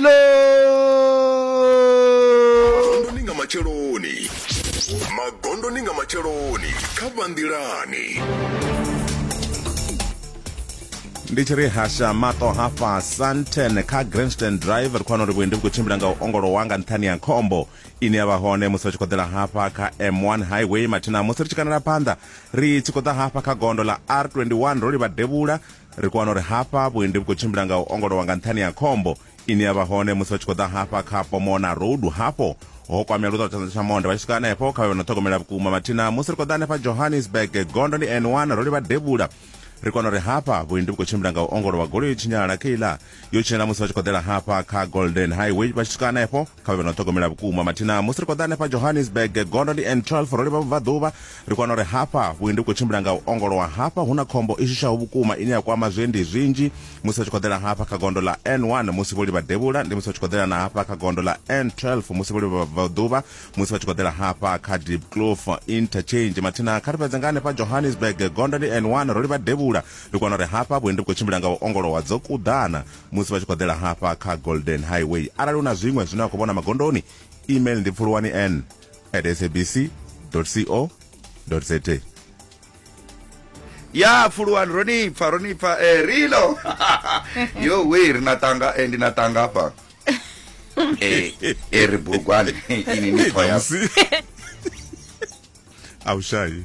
magondoni nga matsheloni magondoni nga matsheloni kha vhanḓilani ndi tshi ri hasha mato hafha santen kha grandstand drive ri khou wana uri vhuendi vhu khou tshimbila nga u ongolowa nga nṱhani ya khombo ine ya vha hone musi ri tshi khou ḓela hafha kha m1 highway mathina musi ri tshi kanela phanḓa ri tshi khou ḓa hafha kha gondo ḽa r21 ro livha devhula ri kho wana uri hafha vhuendi vhu khou tshimbila nga u ongolowa nga nṱhani ya khombo ine ya vha hone musi vha tshi khou ḓa hafha kha pomona road hafho ho kwamea luṱolo tshanḓa tsha monde vha tshi swika hanefho kha vhe no ṱhogomela vhukuma mathina musi ri khou ḓa hanefha johannesburg gondo ndi n1 ro livha devhula ri kona uri hafha vhuendi vhu khou tshimbila nga u ongolowa goloi tshinyalala kha iḽa yo tshinyela musi vha tshi khou ḓela hafha kha golden highway vha tshi swika hanefho kha vhe vha no ṱhogomela vhukuma mathina musi ri khou ḓa hanefha johannesburg gondo ndi n 12 ro livha vhubvaḓuvha ri kwana uri hafha vhuendi vhu khou tshimbila nga u ongolowa hafha hu na khombo i shushaho vhukuma ine ya kwama zwiendi zwinzhi musi vha tshi khou ḓela hafha kha gondo ḽa n1 musi vho livha devhula ndi musi vha tshi khou ḓela na hafha kha gondo ḽa n12 musi vho livha vhubvaḓuvha musi vha tshi khou ḓela hafha kha deep clof interchange mathina kha ri fhedze nga hanefha johannesburg gondo ndi n1 ro livha devhula Ri kona uri hafha vhuendi vhu khou tshimbila nga u ongolowa dzo kuḓana musi vha tshi khou ḓela hafha kha Golden Highway. Arali u na zwiṅwe zwine wa khou vhona magondoni, email ndi pfuluwani n at sabc co za. ya pfuluwani ro ni pfa ro ni pfa eh, rilo yo we ri na tanga eh, ndi na tanga hafha eh, eh, ri bugwani ini ni pfa ya Damusi. Awushayi.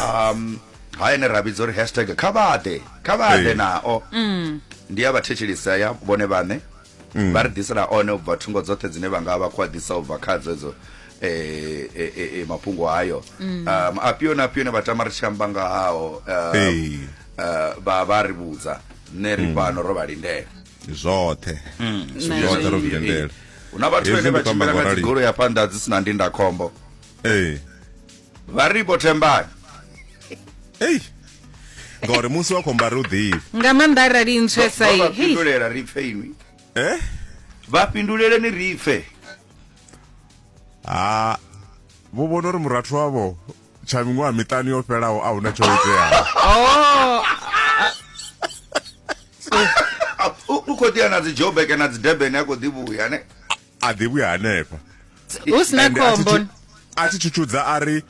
um ha ene ra vhidza uri hashtag kha vhaḓe kha vhaḓe Ee. nao Mm. ndi ya vhathetshelisa ya vhone vhaṋe Mm. vha ri ḓisela one u bva thungo dzoṱhe dzine vha nga vha khou a ḓisa u bva khadzo edzo eh, eh, eh, eh, mafhungo hayo Mm. um afhio na afhio ne vha tama ri tshi amba nga hao um, Ee. eh, vha vha ri vhudza nṋe ri Mm. fhano ro vha lindela zwoṱhe Mm, Zwi nṋe zwoṱhe ro zwi- zwi lindela hu na vhathu Hezwi vhane ndi vha khou amba tshimbila nga ngaurali. dzigolo ya phanḓa dzi si na ndindakhombo ee vha ri vho thembani ei ngauri musi wa khomba ri u ḓivhi nga maanḓa arali ntswesa vha fhindulela ri pfe inwi eh vha fhindulele ni ri pfe ha vho vhona uri murathu wavho tsha miṅwaha miṱanu yo fhelaho a huna tsho iteaho oh. u khou ḓiya na dzi jobeke na dzi debene a khou ḓi vhuya ne a ḓivhi hanefha hu sina Ende a thi khombo tshi- a thi tshutshudza a ri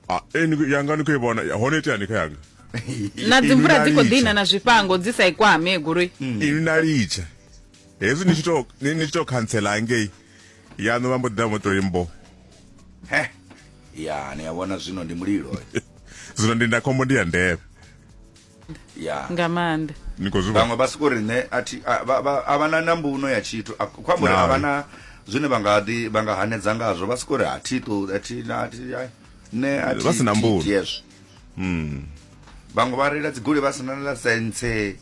"Ah, eh, ni- yanga ni khou i vhona Ya, hone iteani kha yanga na dzimvula dzi khou Inalicha. ḓina na zwifhango dzi sa i kwame goloi ini na litsha hezwi ni tshi to- ni ni tshi to khantsela hangei yaṋu vha mbo ḓi ḓa vho tori mbo he ya ni a vhona zwino ndi mulilo zwino ndindakhombo ndi ya ndeme yeah. nga maanḓa vhaṅwe vha soko ri nṋe a vha na nambuno ya tshithu kho amba uri a vha na zwine vha nga ḓi vha nga hanedza ngazwo vha soko ri a thi to a thi na a thi nṋe a thi vha si na mbuno yes mm vhaṅwe vha reila dzigoloi vha sina na sense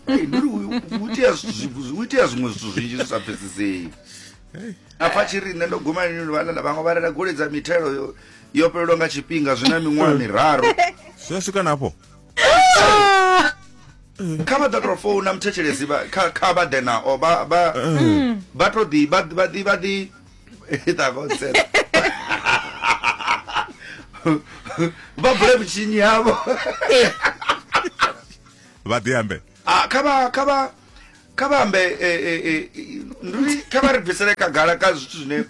ndi ri u itea zwiṅwe zwithu zwinzhi zwi sa pfesesei a pfa tshi ri nṋe ndo guma lini luvhalala vhaṅwe vha rela goli dza mithelo yo- yo fhelelwa nga tshifhinga zwi na miṅwaha miraru zwi a swika nafho kha vha ḓo tou founa muthetshelesi vha- kha kha vha ḓe nao vha vha vha to ḓi vha vha ḓi vha ḓi Ita vho tsena. vha bule mitshinyi yavho vha ḓi ambe Ah, kha vha kha vha kha vha ambe eh, eh, eh, ndi uri kha vha ri bvisele khagala kha zwithu zwine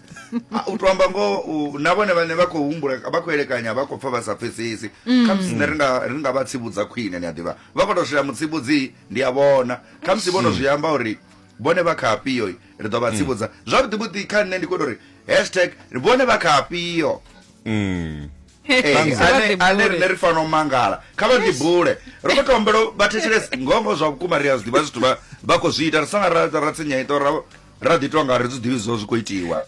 ah, u to amba ngoho u- na vhone vhane vha khou humbula vha khou elekanya vha khou pfa vha sa pfesesi kha musi nṋe ri nga- ri nga vha tsivhudza khwine ni a ḓivha vha khou tou shela mutsivhudzi ndi a vhona kha musi vho no zwi amba uri vhone vha kha afhio ri ḓo vha tsivhudza zwavhuḓivhuḓi kha nṋe ndi khou tou ri hashtag ri vhone vha kha afhio Mm. ane rine ri fanela u mangala kha vha ḓibule ro khou tombelo vha thetshelese ngongo zwa vhukuma ri a zwi ḓivha zwithu vha khou zwi ita ri sanga ra tsinyaito ra ḓi tonga ri zwi ḓivhi zwo zwi khou itiwa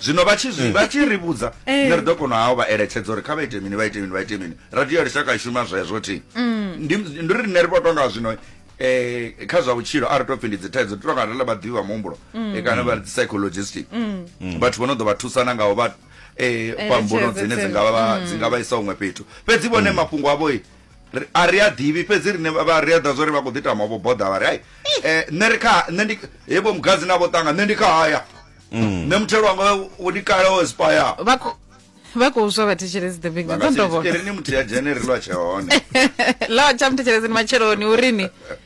zwino vha tshi zwi hmm. vha tshi ri vhudza eh. nṋe ri ḓo kona hao vha eletshedza uri kha vha ite mini vha ite mini vha ite mini radio ya lushaka i shuma zwezwo thi hmm. ndi ri nṋe ri vho tonga zwino um kha zwa vhutshilo a ri tou pfi ndi dzithaidzo ri tonga rela vhaḓivhi vha muhumbulo hmm. eh, kana vha dzi psychologistic vhathu vho no ḓo vha thusana ngaho vha eh, eh kwa mbuno dzine dzi nga vha mm. dzi nga vha isa huṅwe fhethu fhedzi vhone mm. mafhungo avho a ri a ḓivhi fhedzi rine vha ri a ḓa zwori vha khou ḓi tama vho boḓa vha ri ai eh, nṋe ri kha nṋe ndi hevho mugadzi na vho ṱanga nṋe ndi kha haya mm. nṋe muthelo wanga wo ndi kale wo espaya vha khou swa vhathetshelezi the big ntsondovokerini muthu ya dzhene ri lwa tshe hone lwa tsha muthetshelezini matsheloni urini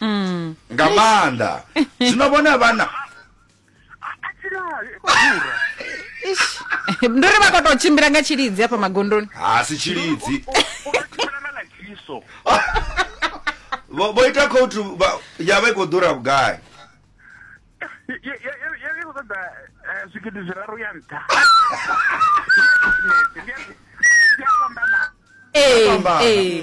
mm. nga maanḓa zwino vhone vhana ndo ri vha kho to tshimbila nga tshilidzi hafha magondoni ha si tshilidzi vho ita khoutu ya vha i khou ḓura vhugai zwigidi zwiraru ya nṱha ee